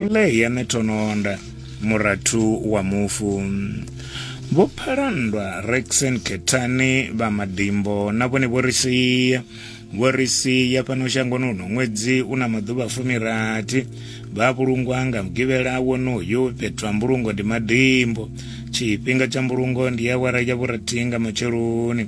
Ile ya netononda murathu wa mufu vho phalandwa rexen kethani vha madimbo na vhone vho ri sia vho ri sia fhano shangoni uno ṅwedzi u na maḓuvha fumirathi vha vhulungwa nga mugivhela wonoyo fhethu ha mbulungo ndi madimbo tshifhinga tsha mbulungo ndi awara ya vhurathi nga matsheloni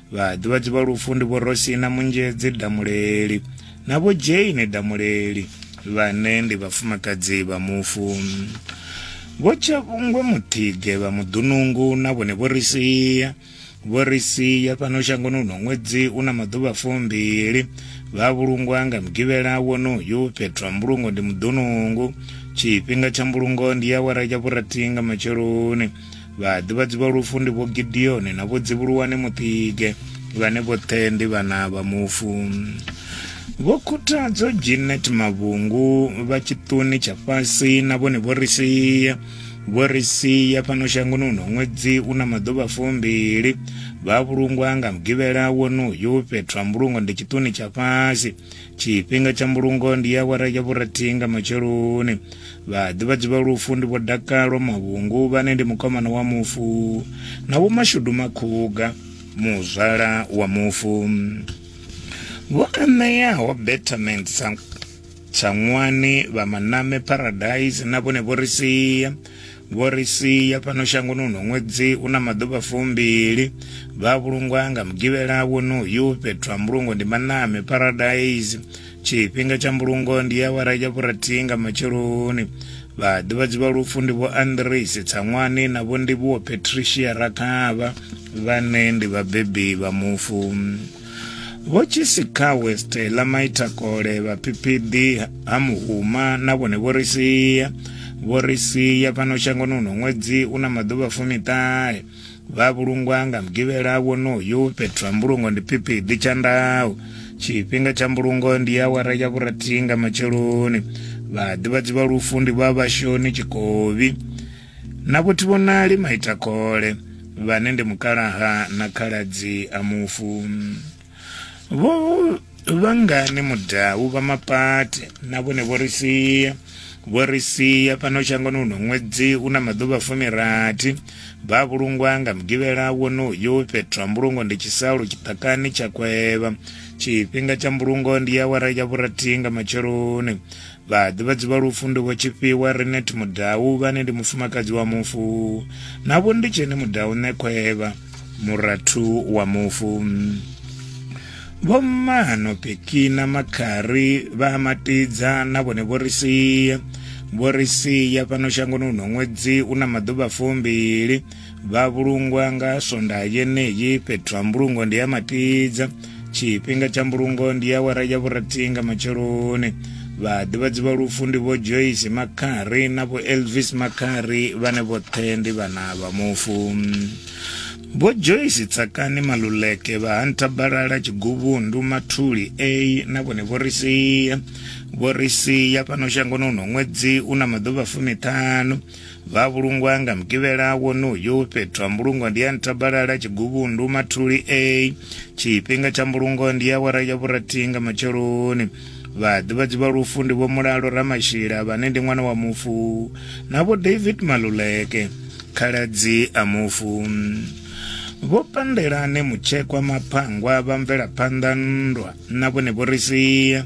vhaḓivhadzi vha lufu ndi vho rosina munzhedzi damuleli na vho jane damuleli vhane ndi vhafumakadzi vha mufu vho tshavhungwe muthige vha muḓunungu na vhone vho ri sia vho ri sia fhano shangoni uno ṅwedzi u na maḓuvha fumbili vha vhulungwa nga mugivhela wonoyu fhethu ha mbulungo ndi muḓunungu tshifhinga tsha mbulungo ndi awara ya vhurathi nga matsheloni Vhaḓivhadzi vha lufu ndi vho Gideoni na vho Dzivhuluwane Mutige vhane vhoṱhe ndi vhana vha mufu. Vho Khuthadzo Ginet Mavhungu vha tshiṱuni tsha fhasi na vhone vho ri sia vho ri sia fhano shangoni uno ṅwedzi u na maḓuvha fumbili vha vhulungwa nga mugivhela wonoyu fhethu ha mbulungo ndi tshiṱuni tsha fhasi tshifhinga tsha mbulungo ndi awara ya vhurathihi nga matsheloni vhaḓivhadzi vha lufu ndi vho dakalo mavhungu vhane ndi mukomana wa mufu na vho mashudu makhuga muzwala wa mufu vho aṋeaho betterment tshaṅwani vha maname paradise na vhone vho ri sia Vho ri sia fhano shangoni uno ṅwedzi u na maḓuvha fumbili. Vha vhulungwa nga mugivhela wonoyu. Fhethu ha mbulungo ndi Maname Paradise. Tshifhinga tsha mbulungo ndi awara ya vhurathihi nga matsheloni. Vhaḓivhadzi vha lufu ndi vho Andrisi Tsaṅwani na vho Ndivhuwo Patricia Rakhavha vhane ndi vhabebi vha mufu. Vho Tshisikawe Stella Maitakole vhaphiphiḓi ha Muhuma na vhone vho ri sia vho ri sia fhano shangoni uno ṅwedzi u na maḓuvha fumiṱahe vha vhulungwa nga mugivhela wonoyu fhethu ha mbulungo ndi phiphiḓi tsha ndau tshifhinga tsha mbulungo ndi ya awara ya vhurathihi nga matsheloni vhaḓivhadzi vha lufu ndi vha vhashoni tshikovi Na Vhutivhonali Maitakole, vhane ndi mukalaha na khaladzi a mufu. Vho Vhangani Mudau vha Mapate na vhone vho ri sia. Vho ri sia fhano shangoni uno ṅwedzi u na maḓuvha fumirathi. Vha vhulungwa nga Mugivhela wonoyu fhethu ha mbulungo ndi Tshisalu tshiṱakani tsha Kwevha. Tshifhinga tsha mbulungo ndi awara ya vhurathi nga matsheloni. Vhaḓivhadzi vha lufu ndi Vho Tshifhiwa Renet Mudau vhane ndi mufumakadzi wa mufu na Vho Nditsheni Mudau Ṋekhwevha, murathu wa mufu. Vho Mmano Pekina Makhari vha a matidza na vhone vho ri sia. Vho ri sia fhano shangoni huno ṅwedzi u na maḓuvha fumbili. vha vhulungwa nga sonda yeneyi fhethu ha mbulungo ndi ya matidza tshifhinga tsha mbulungo ndi ya wara ya vhurathi nga matsheloni vhaḓivhadzi vha lufu ndi vho joyce makhari na vho elvis makhari vhane vhoṱhe ndi vhana vha mufu vho joyce tsakani maluleke vha hanta balala tshiguvhundu mathuli a na vhone vho ri sia vho ri sia fhano shangoni uno ṅwedzi u na maḓuvha fumiṱhanu Vha vhulungwa nga Mugivhela wonoyu. Fhethu ha mbulungo ndi ya Ntabalala, Tshiguvhundu, Mathuli A. Tshifhinga tsha mbulungo ndi awara ya vhurathi nga matsheloni. Vhaḓivhadzi vha lufu ndi Vho Mulalo Ramashila vhane ndi ṅwana wa mufu na Vho David Maluleke, khaladzi a mufu. Vho Pandelane Mutshekwa Maphangwa vha mvelaphanḓa nndwa na vhone vho ri sia.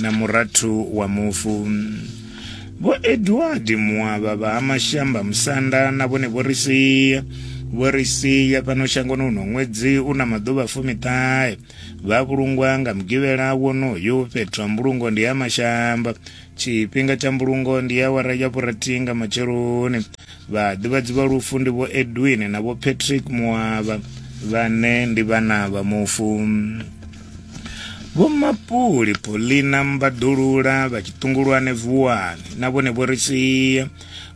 na murathu wa mufu vho edward muavha vha ha mashamba musanda na vhone vho ri sia vho ri sia fhano shangoni uno ṅwedzi u na maḓuvha fumiṱahe vha vhulungwa nga mugivhela wonoyo fhethu ha mbulungo ndi ha mashamba tshifhinga tsha mbulungo ndi awara ya vhurathi nga matsheloni Vhaḓivhadzi vha lufu ndi Vho Edwin na Vho Patrick Muavha vhane ndi vhana vha mufu. Vho Mapuli, Paulina Mbaḓulula vha Tshiṱungulwane Vuwani na vhone vho ri sia.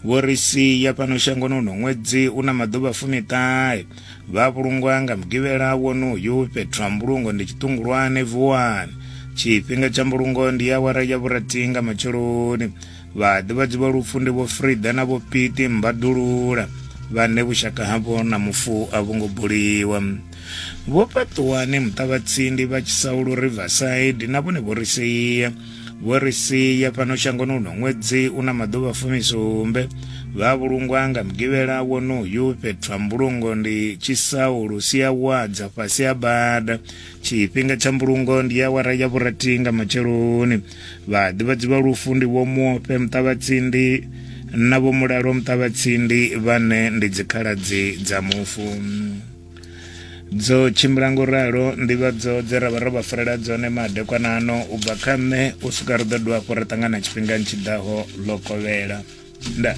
Vho ri sia fhano shangoni uno ṅwedzi u na maḓuvha fumiṱahe. Vha vhulungwa nga Mugivhela wonoyu fhethu ha mbulungo ndi Tshiṱungulwane Vuwani. Tshifhinga tsha mbulungo ndi awara ya vhurathi nga matsheloni. Vhaḓivhadzi vha lufu ndi vho Frida na vho Piti Mbadulula vhane vhushaka havho na mufu a vho ngo buliwa. Vho Paṱuwani Muṱavhatsindi vha Tshisaulu Riverside na vhone vho ri sia vho ri sia fhano shangoni uno ṅwedzi una maḓuvha fumisumbe vha vhulungwa nga mugivhela wonoyu fhethu ha mbulungo ndi Tshisaulu sia wadza fhasi ha bada tshifhinga tsha mbulungo ndi awara ya vhurathi nga matsheloni vhaḓivhadzi vha lufu ndi vho muofhe muṱavhatsindi na vho mulalo muṱavhatsindi vhane ndi dzikhaladzi dza mufu dzo tshimbila ngo ralo nḓivhadzo dze ra vha ro vha farela dzone madekwana ano u bva kha nṋe u swika ri ḓo dovha hafhu ri ṱangana tshifhingani tshi ḓaho ḽo kovhela nda